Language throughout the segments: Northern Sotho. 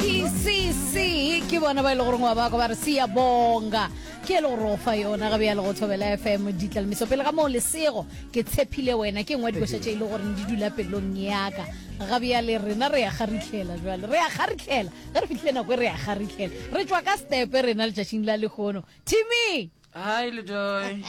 pcc ke bona ba e le goreng wa bako ba re sia bonga ke e le gore o fa yona gabe ya le go thobela fm ditlalemiso pele ga moo lesego ke tshephile wena ke ngwe dikoša tše e le goreng di dula pelong yaka gabe ya le rena re ya kgaritlhela jale re ya kgaritlhela ge re fitlhile nako e re ya kgaritlhela re tswa ka stepe rena letšatšing la lekgono timmy hai ledoy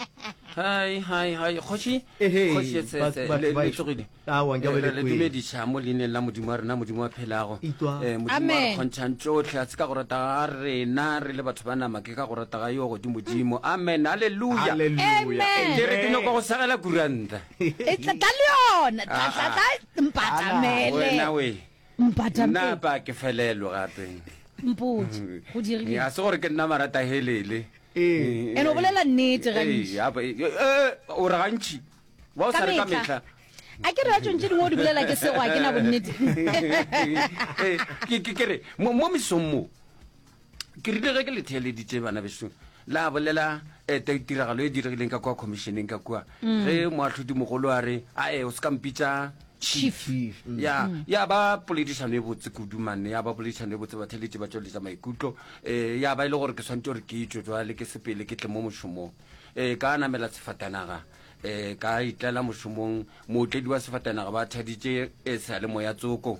hai hai hai kgoši Ehe, kgoši ye ba- tsetse batho le ba le ešo. tlogile Aowa, nke be le re kwele. dumediša mo leineng la modimo wa rena modimo wa phelago Itwa. Eh, modimo wa re Amen. kgontšhang tšohle a se ka go rata ga rena re le batho ba nama ke ka go rata ga yo godimodimo amen halleluja Amen. ke re ke nyoko go segela kuranta E tla tla le yona tla tla tla mpata mele wena we Mpata nna mpe. pa ke felelo gape Mpotše, go dirile. ga se gore ke nna marata helele Ee. And o bolela nnete gantši. Ee, apa, e- e- e, o re gantši wa o sa re ka mehla A ke re ratšong tše dingwe o di bolela ke sego a ke na bonnete. Ee, ke- ke- ke re mo mo mesong moo ke rile ge ke le theeleditše bana beso la bolela eh, ta tiragalo e diregileng ka kwa commissioneng ka kua mm. ge moatlhodi mogolo a re ae o se ka mpitsa chief mm. ya mm. ya ba poledišano e botse kudu manne ya ba poledišano e botse batheletše ba tšweletša maikutlo um ya ba e le gore ke tshwanetse gore ke itšo jwale ke sepele ke tle mo mošomong um ka namela sefatanaga um ka itlela mošomong mootledi wa sefatanaga ba thaditše e sa le moya tsoko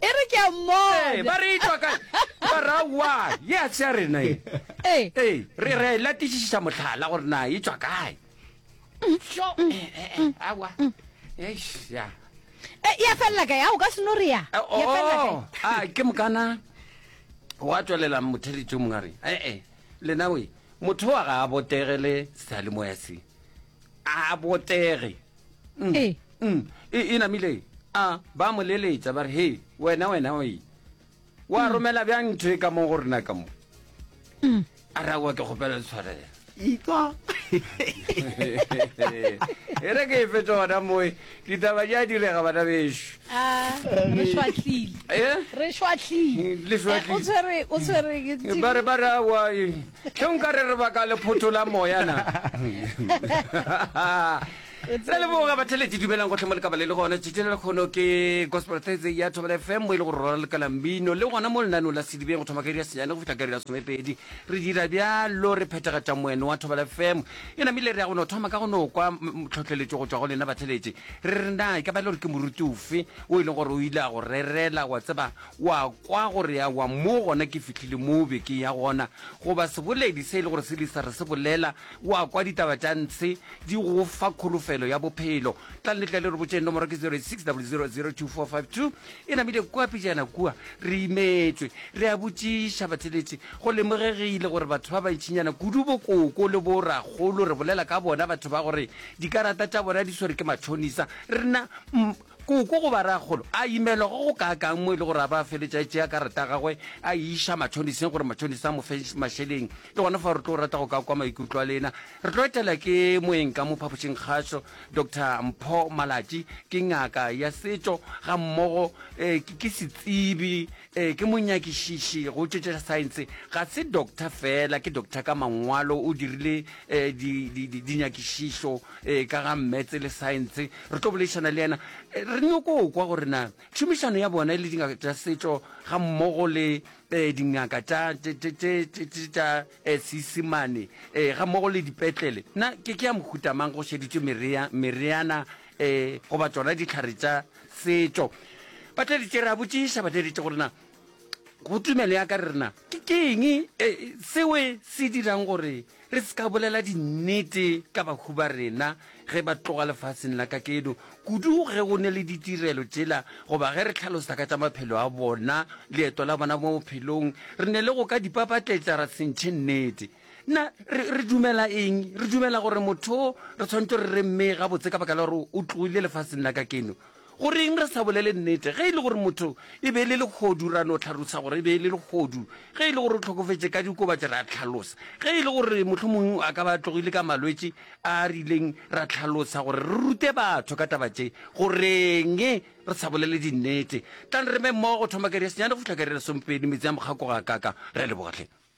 e re ke a mmona ba re etwa kae ba ra wa ye a se ya rena e ee re re la tisiša mohlala gore na e tswa kae sho awa eish ya ya fella kae a o ka seno re ya ya fella kae oh, a ah, ke mokana wa tswelela motheletso mong a re ee lena we motho wa ga a botegele sealemoya se a botege mm, e mm, e, e namile a ba mo leletsa ba re he wena wena oe wa mm. romela bjang ntho e ka mo go rena ka mo mm. a ra wa ke kgopela tshwarela itswa e re ke e fetsa gona moe ditaba ja direga bana beso ah, re šwatlile eh? re šwatlile eh, o tshwere o tshwere ba re ba re wa Ge nka re re baka lephotho la moya na? Re leboga batheletši dumelang gohle mo le ka ba le le gona tšatši le lekgono ke Gospel Thursday ya Thobela FM mo e le go rora lekala mmino le gona mo lenanong la sedibeng go thoma ka iri ya senyane go fihla ka iri ya somepedi re dira bjalo re phethagatša moeno wa Thobela FM e namile re ya go no thoma ka go no kwa tlhohleletšo go tšwa go lena batheletši re re na e ka ba e le gore ke moruti ofe o e leng gore o ile a go rerela wa tseba O a kwa gore ya wa mo gona ke fihlile moo be ke ya gona, goba seboledi se e le gore se lisa re se bolela, o a kwa ditaba tša ntshe di go fa kholofelo ya bophelo. Tla le tle le re botšeng, nomoro ke 086000245 2. E namile kua pejana kua, re imetšwe, re a botšiša batheletši. Go lemogegile gore batho ba bantšinyana kudu bokoko le bo rakgolo re bolela ka bona, batho ba gore dikarata tša bona di swere ke matšhonisa, re na, mm, Koko goba rragolo a imelwa go go kaakang mo e le gore a ba a feletše a tšea karata ya gagwe a e iša matšhoniseng gore matšhonise a mo fe mašeleng. Ke gona fao re tlo rata go ka kwa maikutlo a lena. Re tlo etela ke moeng ka mo phapošingkgašo Doctor Mpho Malatji. Ke ngaka ya setšo ga mmogo ke setsebi Ee, ke monyakišiši go tšo tša saense. Ga se doctor fela, ke doctor ka mangwalo. O dirile um di, di, di, dinyakišišo um ka ga mmetse le saense. Re tlo boledišana le yena. Eh, Re nyoko o kwa gore na tšhomišano ya bona le dingaka tša setšo ga mmogo le um dingaka tša tše- tše- tše- tše- tše- tša um seisemane um ga mmogo le dipetlele na ke ke ya mohutamang go šeditšwe merea- mereana um goba tsona ditlhare tša Setšo. Ba tleditše, re a botšiša, ba tleditše gore na go tumelo ya ka re rena ke keng e, seo se dirang gore re se ka bolela dinnete ka bahu ba rena ge ba tloga lefaseng la kakeno, kudu ge go ne le ditirelo tšela goba ge re tlhalosa ka tša maphelo a bona, leeto la bona mo bophelong, re ne le go ka di papatletša ra sentšhe nnete. na re, re dumela eng re dumela gore motho re tshwanetse re re mme gabotse ka baka la gore o tloile lefaseng la ka keno goreng re sa bolele nnete ge e le gore motho e be e le legodu ra no tlhalosa gore e be e le legodu ge e le gore o tlhokofetse ka dikobatse ra tlhalosa ge e le gore motlho mongwe a ka ba tlogile ka malwetse a a rileng ra tlhalosa gore re rute batho ka taba tse goreng re sa bolele dinnete tla re me mmogo go thoma kere senyane go fitlha kere le sompedi metsi a mokgako ga kaka re lebogatlhe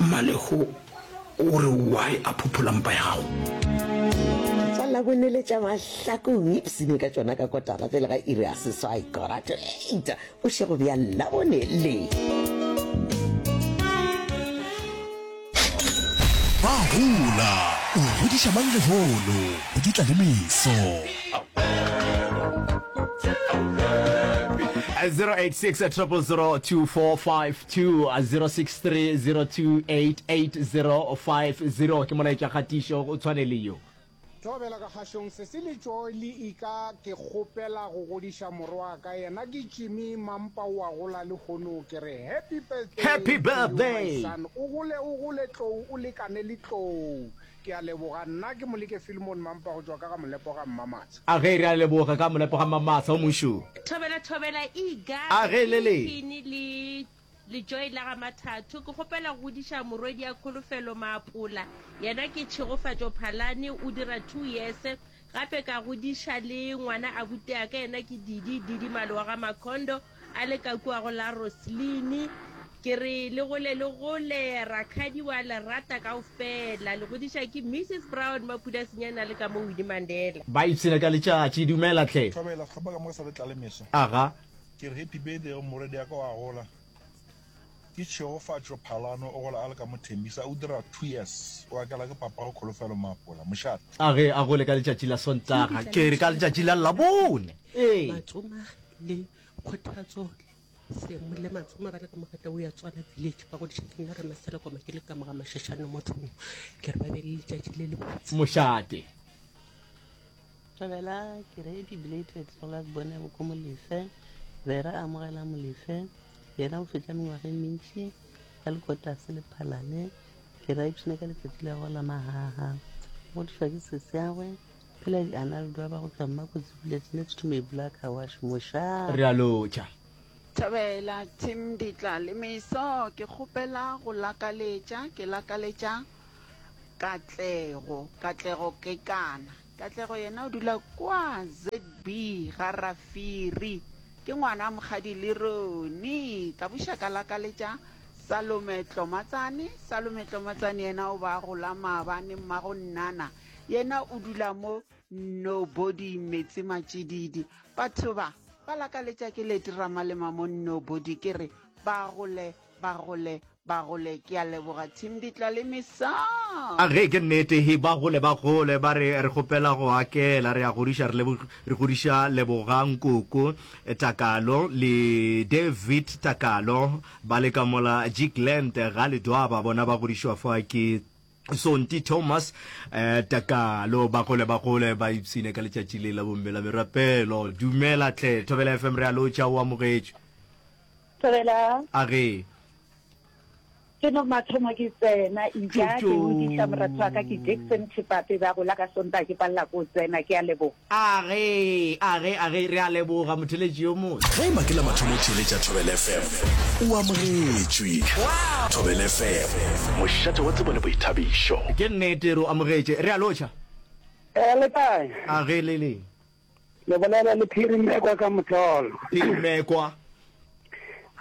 Mmalego o re why a phophola mpa ya gago. Ke tla Labonele tša mahlaku ipsene ka tšona ka kotara pele ga iri ya seswai, quarter to eight, bošego bja Labonele. Ba hola, o rodiša mang lehono? Go dutla le meso. 086 000 2456 2-063-02-88-050 ke molaetša kgatišo o tshwane le yo. Thobela ka kgašong sesi le tšoeli ika ke kgopela go godiša moro wa ka yena ke Jimmy mampa o a gola le hono ke re happy birthday Happy birthday! to you my son o gole o gole tlou o lekane le tlou Ke a leboga. Nna ke Moleke Filmon Mampa go tšwa ka ga Molepo ga Mmamatsha. A ge re a leboga ka Molepo ga Mmamatsha o mošo. Thobela Thobela Iga A ge le le. Phini le Lejoy la ga Mathatho. Ke kgopela go godiša morwedi ya Kholofelo Maapola. Yena ke Tšhegofatšo Phalane, o dira two years. Gape ka godiša le ngwana abutea ka yena ke Didi, Didi Malo wa ga Makhondo, a le ka kua go la Roseline. Ke re le gole le gole, rakhadi wa le rata kaofela. Le godiša ke Mrs Brown Maphuda Sinyane a le ka mo Winnie Mandela. Ba ipshina ka letšatši. Dumela hle. Thobela, hlapa ka moka sa le tlale mehla. Aga. Ke re happy birthday go morwediaka wa gola. Ke tšhegofatšo Phalano o gola a le ka mo Tembisa, o dira two years, o akela ke papago Kholofelo Maapola, mošate. A ge a gole ka letšatši la Sontaga, ke re ka letšatši la Labone, ee. Matsoma le Kgothatso Semu le Matsoma ba le ka mo Gata Uya Tswana Village ba godiša ke nna Ramasela Koma ke le ka moga Mashashane mo Thongo, ke re ba be le letšatši le lebotse. Mošate. Thabela Kiredi Belated Solas Bone Boko Molefe be re amogela Molefe yena o fetša mengwaga e mentši ka lekotase le phalane ke ra ipshine ka letsatsi la go la mahaha go tšwa ke seseagwe phela di analdo ba go tswa mma kotsi buletse next to me black awash mosha re a lotšha Thabela Tim Ditla le Meso ke kgopela go lakaletša ke lakaletša Katlego, Katlego ke kana? Katlego yena o dula kwa ZB ga Rafiri. Ke ngwana mokgadi le roni. Ka buša ka lakaletša Salome Tlomatsane. Salome Tlomatsane yena o ba gola maabane mmago nnana. Yena o dula mo nobody metsi matšididi. Batho ba ba lakaletša ke letirama le mamo nobody ke re ba gole ba gole Bagole ke a leboga team ditla le misa. A ge ke nnete he ba gole ba gole ba re re kgopela go akela re a godiša re lebog re godiša Lebogang Koko Takalo le David Takalo ba le ka mola Jigland ga Ledwaba bona ba godišwa fa ke Sonti Thomas eh, Takalo ba gole ba gole ba ipsine ka letšatši le la bomme la merapelo dumela tle Thobela FM re a lotša o amogetšwe Thobela. A re. Ke no mathomo ke tsena, ija ke o diša moratho wa ka ke Jackson Tšhipape, ba gola ka Sontaga ke palela ko o tsena. Ke a leboga. A re, a re, a re, re a leboga motheletši yo motse. Ge e ba ke la mathomo o theeletša Thobela FM, o amogetšwe. Thobela FM, mošate wa tsebo le boithabišo. Ke nnete, re o amogetše. Re a lotšha. Ee, le kae? A re, le le? Le bolela le Phirimekwa ka motlolo. Phirimekwa.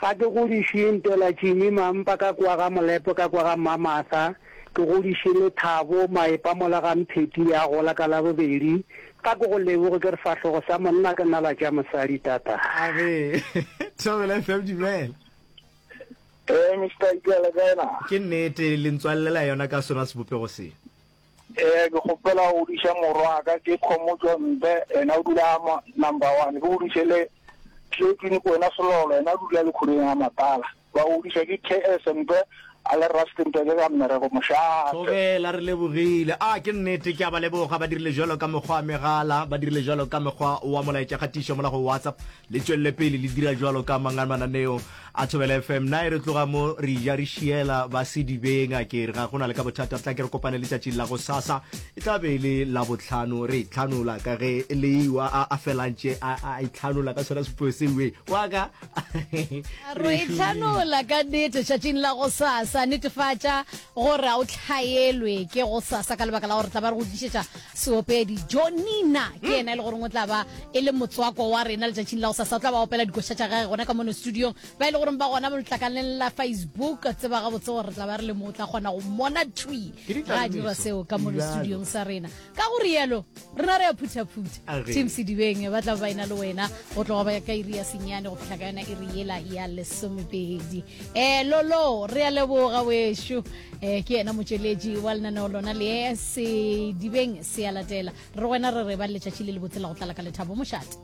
Ga ke godišwe Ntela Jimmy Mampa ka kwa ga Molepo ka kwa ga Mmamatha, ke godišwe le Thabo Maepa mola ga Mpheti ya gola ka Labobedi. Ga ke go leboge ke re sahlogo sa monna ke nala tša mosadi tata. A re Thobela FM dumela. Ee Mister Ikela kae na? Ke nnete le ntswalelela yona ka sona sebopego se. Ee, ke kgopela go duša morwaka ke Khomotšo Mbe, yena o dula mo number one. Ke go duše le Tletswini Kwena Selolo, yena o dula le khuring ya Matala. Ba go duša ke KS Mbe a le Rustenburg ka mmereko mošate. Tlogela re lebogile. A ke nnete, ke a ba leboga. Ba dirile jalo ka mokgwa wa megala, ba dirile jalo ka mokgwa wa molaetšakgatišo mola go WhatsApp. Le tšwelele pele le dira jwalo ka mang a mananeo a Thobela FM. Na e re tloga mo re eja re šiela ba sedibeng a ke re ga go na le ka bothata tla ke re kopane letšatšing la go sasa e tla be e le la botlhano re e tlhanola ka ge le iwa a, a felantše a, a e tlhanola ka sona sepeo seuwe wa ka Re e tlhanola ka nete tšatšing la go sasa. Netefatša gore a o hlaelwe ke go sasa ka lebaka la gore re tla ba re go tlišetša Seopedi Jo Nina ke yena e le goreng o tla ba e le motswako wa rena letšatšing la go sasa o tla ba opela dikoša tša gage gona ka mono studiong ba e le goreng ba gona letlakaleng la facebook tseba gabotse gore re tla ba re le mo o tla kgona go mona twi ga a dira seo ka mono studiong sa rena ka go rialo rena re a phuthaphutha tim sedibeng ba tla ba ena le wena go tloga ba ka iri ya senyane go fitlha ka yona iri yela ya lesomepedi um lolo re a leboga wešo eh ke yena motšweletši wa lenaneo lona le sedibeng se ya latela re wena re re ba letšatši le le botsela go tlala ka lethabo mošate